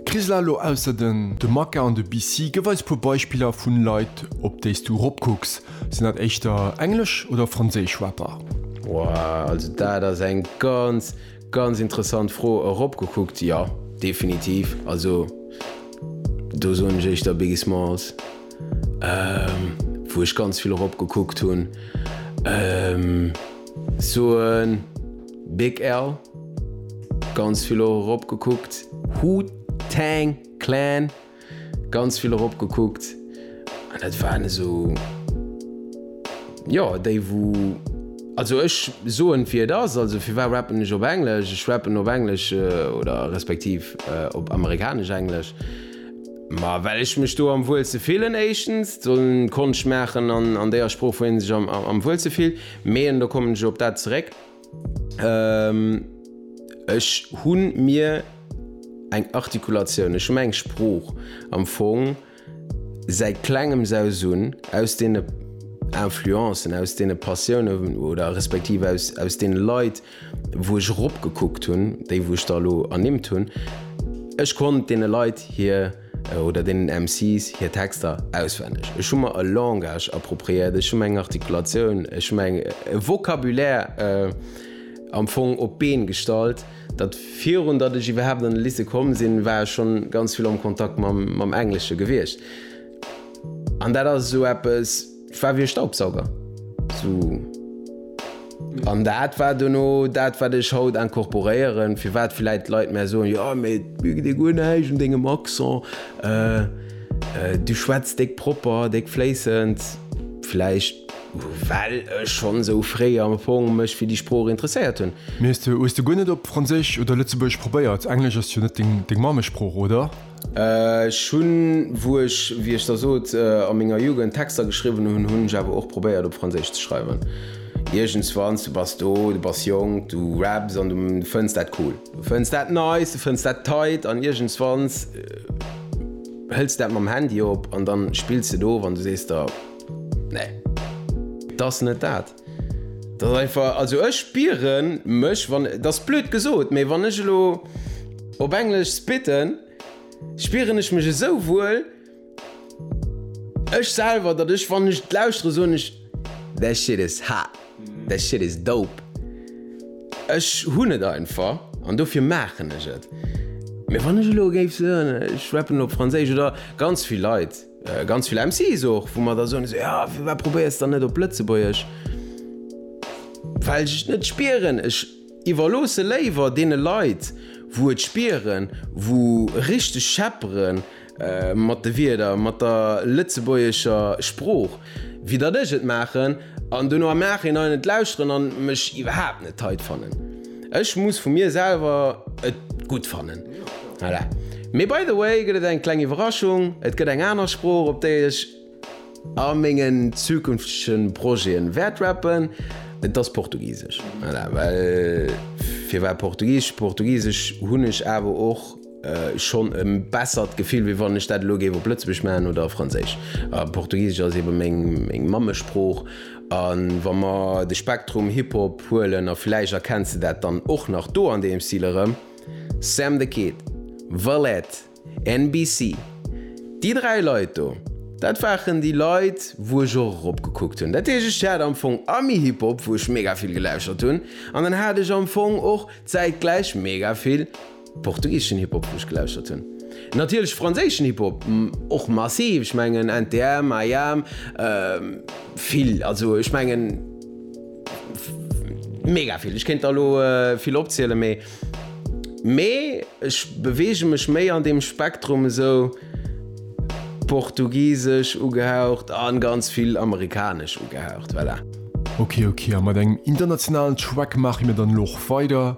D'Krisla lo ausser den. De Maka an de BC, gëff eis puer Beispiller vun Leit op déis du rop kucks. Sinn dat éischter englesch oder franséisch Rapper? Wouah, also dat ass eng ganz, ganz interessant Fro. Erop gekuckt, jo, definitiv. Also do soen ech éischter Biggie Smalls, wou ech ganz vill erop gekuckt hunn. Soen, Big L, ganz vill och erop gekuckt. Hu Tang Clan, ganz vill erop gekuckt. An dat waren esou, jo, déi wou, also ech soen wéi et ass, also firwat rappen ech op Englesch? Ech rappen op Englesch oder respektiv op amerikanesch Englesch, ma well ech mech do am wuelste fillen éischtens, sollen Konscht maachen an an déier Sprooch wou een sech am wuelste fillt. Mee, an do kommen ech op dat zeréck, ech hu mir eng Artikulatioun, ech hu mir eng Sprooch am Fong säit Klengems aus un, aus deene Influencen, aus deene Passiounen oder respektiv aus deene Leit, wou ech eropgekuckt hunn, déi wou ech der elo ernimmt hunn, ech konnt deene Leit hir. oder deenen MCs hir Texter auswenneg. Ech hu mer e Langage appropriéiert, ech hu mer eng Artikulatioun, ech hu mer e Vocabulaire am Fong op d'Been gestallt, datt virun datt ech iwwerhaapt an de Lycée komm sinn, war ech schonn ganz vill am Kontakt mam Englesche gewiescht. An dat ass esou eppes, Et war wéi e Staubsauger. Sou. An dat war duerno dat, wat ech haut incorporéieren, firwat vläit d'Leit mär soen, jo, mee et mierkt ee guer näischt un dengem Accent, du schwätz déck propper, déck fléissend. Vläicht, well ech schonn esou fréi am Fong mech fir déi Sprooch interesséiert hunn. Mee hues de guer net op Franséisch oder Lëtzebuergesch probéiert? Englesch ass jo net deng Mammesprooch, oder? Ech hunn, wou ech, wéi ech der sot, a menger Jugend Texter geschriwwen hunn, hunn ech awer och probéiert op Franséisch ze schreiwen. Iergendswanns, du bass do, du bass jonk, du raps an du fënns dat cool. Du fënns dat nice, du fënns dat tight an iergendswanns hëls de dat mam Handy op an da spills de do of an du sees der, nee, et ass net dat. Also ech spiere mech, dat ass blöd gesot, mee wann ech elo op englesch spitten, spieren ech mech esou wuel, ech selwer, datt ech wann ech et lauschtere soen ech that shit is hot, that shit is dope. Ech hunn et einfach an dofir maachen ech et. Mee wann ech elo géif soen ech rappen op franséisch oder ganz vill Leit, Ganz vill MCs och, wou mer da soen, esou, jo, firwat probéiers de dann net op Lëtzebuergesch? Well ech et net spieren. Ech iwwerloosse léiwer deene Leit, wou et spieren, wou richteg scheppere mat de Wierder, mat der lëtzebuergescher Sprooch. wéi datt ech et maachen an dono am Nachhinein et lauschteren an mech iwwerhaapt net tight fannen. Ech muss vu mir selwer et gutt fannen. Voilà. Mee by the way gëtt et eng kleng Iwwerraschung, et gëtt eng aner Sprooch op déi ech a mengen zukünftege Projeten wäert rappen, et ass Portugisesch. Voilà, well firwat Portugisesch? Portugisesch hunn ech awer och. schonn e bessert Gefill, wéi wann ech dat elo géif op Lëtzebuergesch maachen oder a Franséisch. Portugisesch ass ebe meng Mammesprooch. A wa mer de Spektrum Hip-Hop huelen, a vläicht erkenns de dat dann och nach do an deem Stil erëm, Sam the Kid, Valette, NBC, déi dräi Leit do, dat waren déi Leit, wou ech och eropgekuckt hunn. Dat heescht, ech hat am Fong Ami-Hip-Hop, wou ech mega vill gelauschtert hunn, an dann hat ech am Fong och zäitgläich mega vill. Portugiseschen Hip-Hop wou ech gelauschtert hunn. Natierlech franséischen Hip-Hop och massiv, ech mengen NTM, IAM, vill, also ech mengen mega vill, ech kéint der elo vill opzielen, mee mee ech beweege mech méi an deem Spektrum esou portugisesch ugehaucht a ganz vill amerikanesch ugehaucht, voilà. Ok ok, a mat engem internationalen Track maache mir dann elo och weider,